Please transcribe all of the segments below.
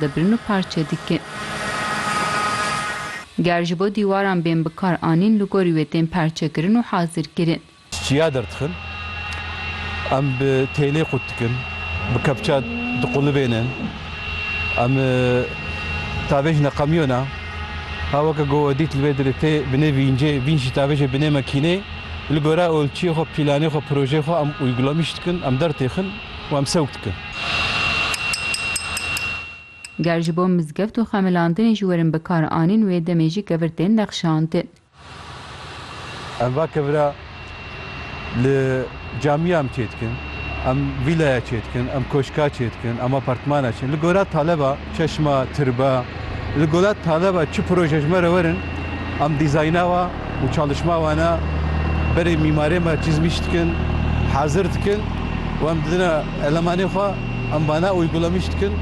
dibrin û parçe dikin. Ger ji bo dîwaran bên bikar anîn li gorî wê tên perçekirin û hazirkirin. Çiya derdixin, em bi têlê qut dikin, bi kepça diqulibênin. Em tavê ji neqemiyona ha weke ku we dît li vê derê tê bi nêvî încê vîn jî tavê jê bi nê mekînê li gora olçiyê xwe, pîlanê xwe, projeyê xwe em uygulamîş dikin, em dertêxin. û em sewk dikin. Ger ji bo mizgeft û xemilandinê jî werin bikar anîn wê demê jî kevir tên nexşandin. Em va kevira li camiya em çêdikin, em vîlaya çêdikin, em koşka çêdikin, em apartmana çêdikin. Li gora taleba. Çeşma, Tirba, li gola Taleba çi proje ji me re werin em dîzayna wan û çalişma wana berê mîmarê me çizmîş dikin, hazir dikin û em didine elemanê xwe em wana uygulamîş dikin.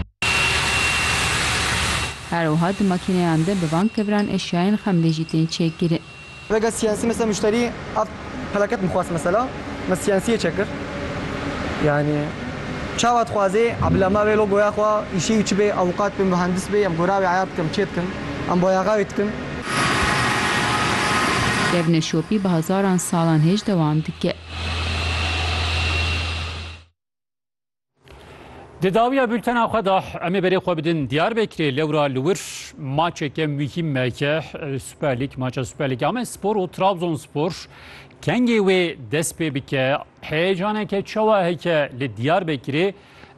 Her wiha di makîneyan de bi van keviran eşyayên xemlê jî tên çêkirin. Vega siyasî mesela muşterî ev pelaket min xwest mesela min siyasiyê çekir yanî çawa dixwazê bila me vê logoya xwe îşê wî çi bê ewqat bê muhendis bê em gora wê eya dikim çê dikim em bayaxa wê dikim. Devne şopî bi hezaran salan hêj dewam dike. Di dawiya bültena xwe de em ê berê xwe bidin Diyarbekirê lewra li wir maçeke muhîm me ke Super Lig maça Super Lig Amed Spor û Trabzonspor kengê wê dest pê bike heyecaneke çawa heke li Diyarbekirê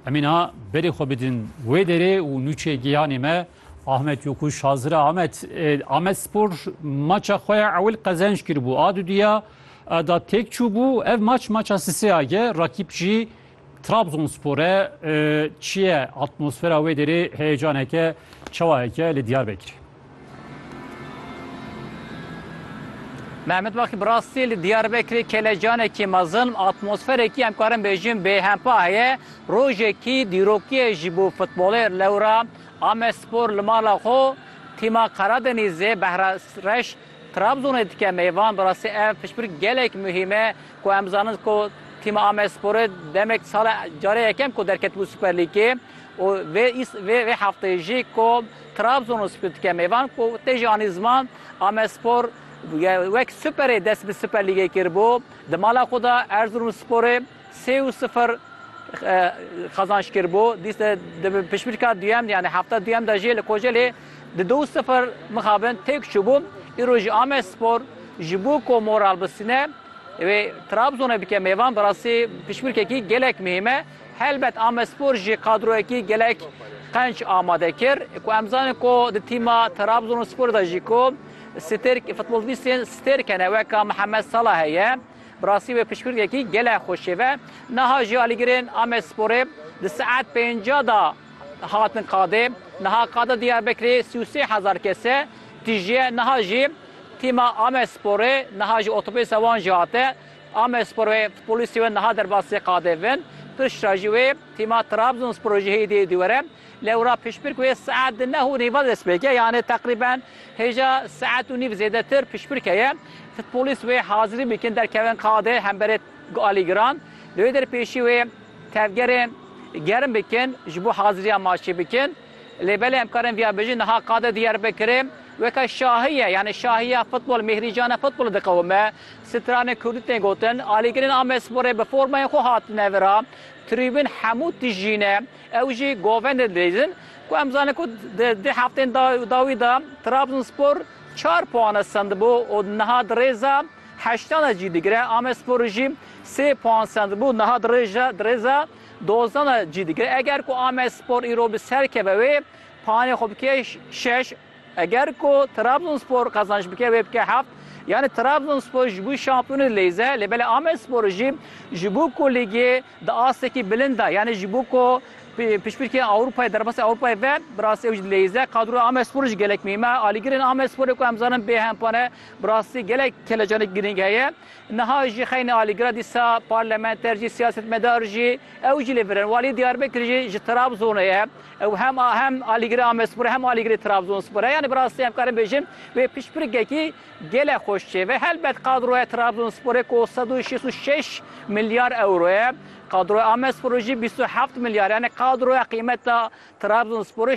em ê niha berê xwe bidin wê derê û nûçê giyanê me Ahmet Yokuş hazira Ahmet Ahmet Spor maça xwe ya ewil qezenç kiribû a dudiya da têk çûbû. Ev maç maça Siseya ye. Rakîp jî Trabzonspor e. Çi ye atmosfera wê derê heyecaneke çawayeke li Diyarbekirê? Mehmet Bakî bi rastî li Diyarbekirê kelecanekî mezin atmosferekî em karin bêjin bêhempa heye. Rojekî dîrokîye jî bû futbolê lewra Amedspor li mala xwe tîma Karadenîzê Behra Reş Trabzonê dike mêvan bi rastî ev piştbirk gelek muhîm e ku em zanin ku tîma Amedsporê demek sala carê yekem ku derketibû Superlîgê û vê vê vê hefteyê jî ku Trabzon û Split dike mêvan ku tê jî anî ziman Amedspor wek Superê dest bi Superlîgê kiribû di mala xwe de Erzurumsporê Sê û sifir qazanç kir bû. Dîse di pişmîrka duyem yanî hefta duyem de jî li Kocelê di du û sifir mixabin têk çûbû. Îro jî Amedspor ji bo ku moral bisîne wê Trabzonê bike mêvan bi rastî pişmîrkekî gelek muhîm e. Helbet Amedspor jî qadroyekî gelek qenc amade kir ku em zanin ku di tîma Trabzonsporê de jî ku stêrk futbolbîstên stêrk hene weka Mihemed Salah heye. Bi rastî wê piştgirîkekî gelek xwe şêve. Niha jî alîgirên Amedsporê di saet pêncî de hatin qadê. Niha qada Dîyarbekirê sî û sê hezar kes e. Tîjiye niha jî tîma Amedsporê niha jî otobûsa wan jî hate. Amedspor wê futbolîstê wê niha derbasî qadê vin. Piştre jî wê tîma Trabzonsporê jî hêdî dîwere. Lewra piştbirk wê saet di neh û nîva dest pê ke yanê teqrîben hêja saet û nîv zêdetir piştbirke ye. Futbolîst wê hazirî bikin derkevin qadê hemberê alîgiran. Li wê der pêşî wê tevgerên germ bikin ji bo haziriya maçê bikin. Lê belê em karin viya bijin niha qadê Diyarbekirê weke şahiye yanê şahiya futbol mêhrîcana futbolê diqewime. Stranên kurdî tên gotin alîgirên Amedsporê bi formayên xwe hatine vira. Trîbin hemû tijî ne. Ew jî govên li dijîn ku em zanin ku di deh heftên dawî de Trabzonspor çar puane sendibû û niha di rêza heştan de cî digire, Amedspor jî sê puan sendibû niha di rêza dozdan de cî digire. Eger ku Amedspor îro bi ser keve wê puanê xwe bike şeş, eger ku Trabzonspor qezanc bike wê bike heft, yanî Trabzonspor ji bo şampiyonê li lêze, lê belê Amedspor jî ji bo ku lîgê Di astekî bilind de yanî ji bo ku piştpirkê Ewropayê derbasî Ewropayê ve bi rastî ew jî dileyîze. Kadroya Amedsporê jî gelek mîm e. Alîgirên Amedsporê ku em zanin bê hempa ne bi rastî gelek kelecanê girîng heye. Niha jî xeynî alîgira dîsa parlamenter jî siyasetmedar jî ew jî li vir in. Walî Diyarbekir jî ji Trabzonê ye. Ew hem hem alîgirê Amedsporê hem alîgirê Trabzonspor e. Yanî bi rastî em karin bêjin wê piştpirkekî Gelek xweş çêve helbet qadroya Trabzonsporê ku sed û şêst û şeş milyar ewro ye, qadroya Amedsporê jî bîst û heft milyar ye. Yanî qadroya qîmeta Trabzonsporê